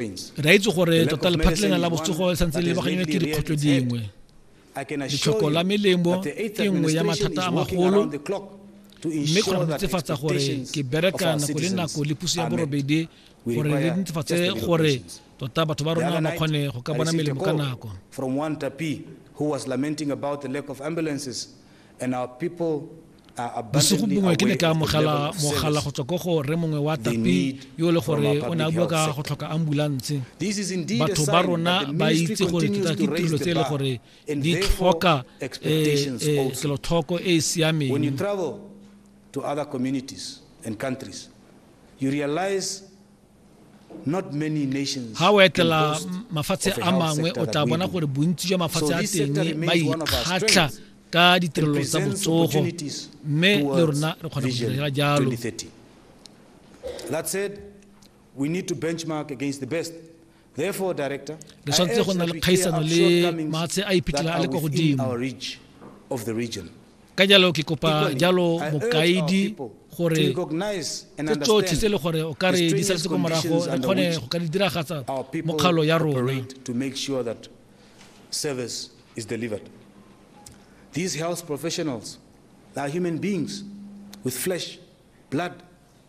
Re a itse gore tota lephatlelena la botsogo le santse le baganyana ke dikgwetlho dingwe. Letlhoko la melemo ke nngwe ya mathata a magolo mme kgona go netefatsa gore ke bereka nako le nako le puso ya borobedi gore re netefatse gore tota batho ba rona ba kgone go ka bona melemo ka nako from one tapi who was lamenting about the lack of ambulances and our people bosigo bongwe ke ne ka amogela mogala go tswa ko go re mongwe wa tapi yo e le gore o ne a bua ka go tlhoka ambulanse batho ba rona ba itse gore ke tirelo tse e le gore di tlhoka kelotlhoko eh, eh, e e siameng ga o etela mafatshe a mangwe o tla bona gore bontsi jwa mafatshe a teng ba ikgatlha ka ditirelo tsa botsogo mme le rona re kgona go direla jalo re swanetse go nna le kgaisano le maatshe a iphitlhela a le kwa godimo ka jalo ke kopa jalo mokaedi gore tse tsotlhe tse e le gore o ka re di saletse ko morago re kgone go ka di diragatsa mokgalo ya rona service is delivered. These health professionals are human beings with flesh, blood,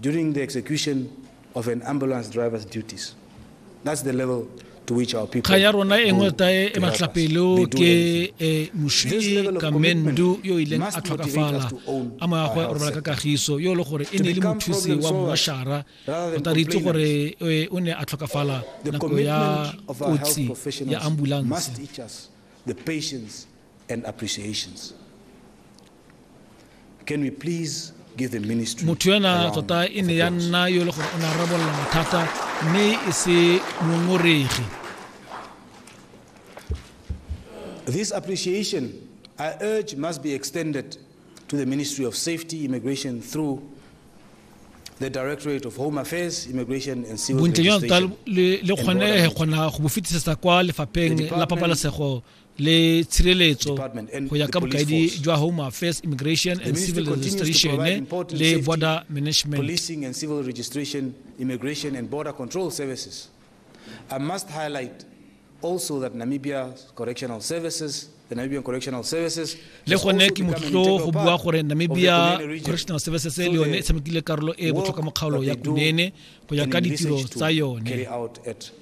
During the execution of an ambulance driver's duties. That's the level to which our people kga ya rona e nngwe tae e matlapelo ke e mošwi kamendu yo o ileng a tlhokafala a mo ya gwe o robala ka kagiso yo e le gore e ne e le mothusi wa mmošara o ta re itse gore e, o ne a tlhokafala nako ya kotsi ya ambulance and appreciations. Can we please give the ministry motho ena a round tota e of ne ya applause? nna yo e le gore o ne a rarabolola mathata mme e se ngongoregi This appreciation, I urge, must be extended to the Ministry of Safety, Immigration through the Directorate of Home Affairs, Immigration and Civil bontle jwa tota Registration. le le and Border kgonege Management. kgona go bo fetisetsa kwa lefapheng The la Department pabalesego le tshireletso go ya ka bokaedi jwa home affairs immigration and civil registration le border management policing and civil registration immigration and border control services i must highlight also that namibia correctional services the Namibian Correctional Services le gone ke motlotlo go bua gore Namibia Correctional Services le yone e tshamekile karolo e botlhokwa mo kgaolo ya Kunene go ya ka ditiro tsa yone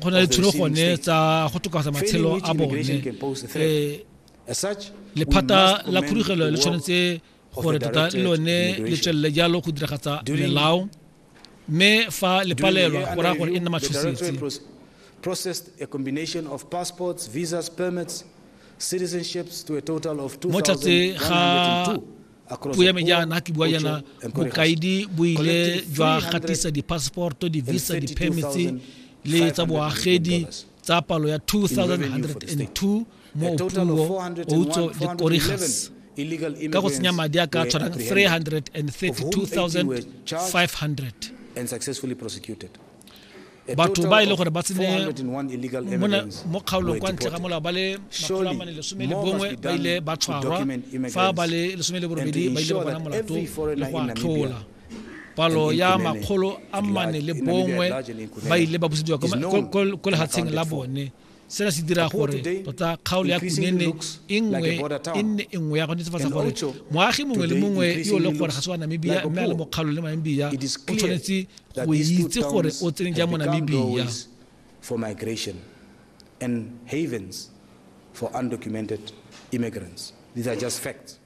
go na le tsholo gone tsa go tokafatsa matshelo a bone eh, lephata la khurugelo le tshwanetse gore tota le lone le tswelele jalo go diragatsa melao mme fa le palelwa go raya gore e nna matshosetsi processed a combination of passports, visas, permits, citizenships to a total of 2,102. puo ya me jaana ke bua jaana bokaedi bo ile jwa gatisa di-passporto di-visa di-permits le tsa boagedi tsa palo ya 2102 mo opuo outso le korigas ka go tsenya madi a ka tshwanang 332500 batho ba e le gore ba tsene mo kgaolong kwa ntle ga molao ba le makgolo a mane lesome le bongwe ba ile ba tshwarwa fa ba le lesome le borobedi ba ile ba bona molato le go atlhola palo ya makgolo a mane le bongwe ba ile ba busediwa ko lehatsheng la bone Sena se dira gore tota kgaolo ya Kunene e nngwe e nne e nngwe ya go netefatsa gore moagi mongwe le mongwe yo le gore ga se wa Namibia mme a le mo kgaolong le Namibia o tshwanetse go itse gore o tsene jang mo Namibia for migration and havens for undocumented immigrants. These are just facts.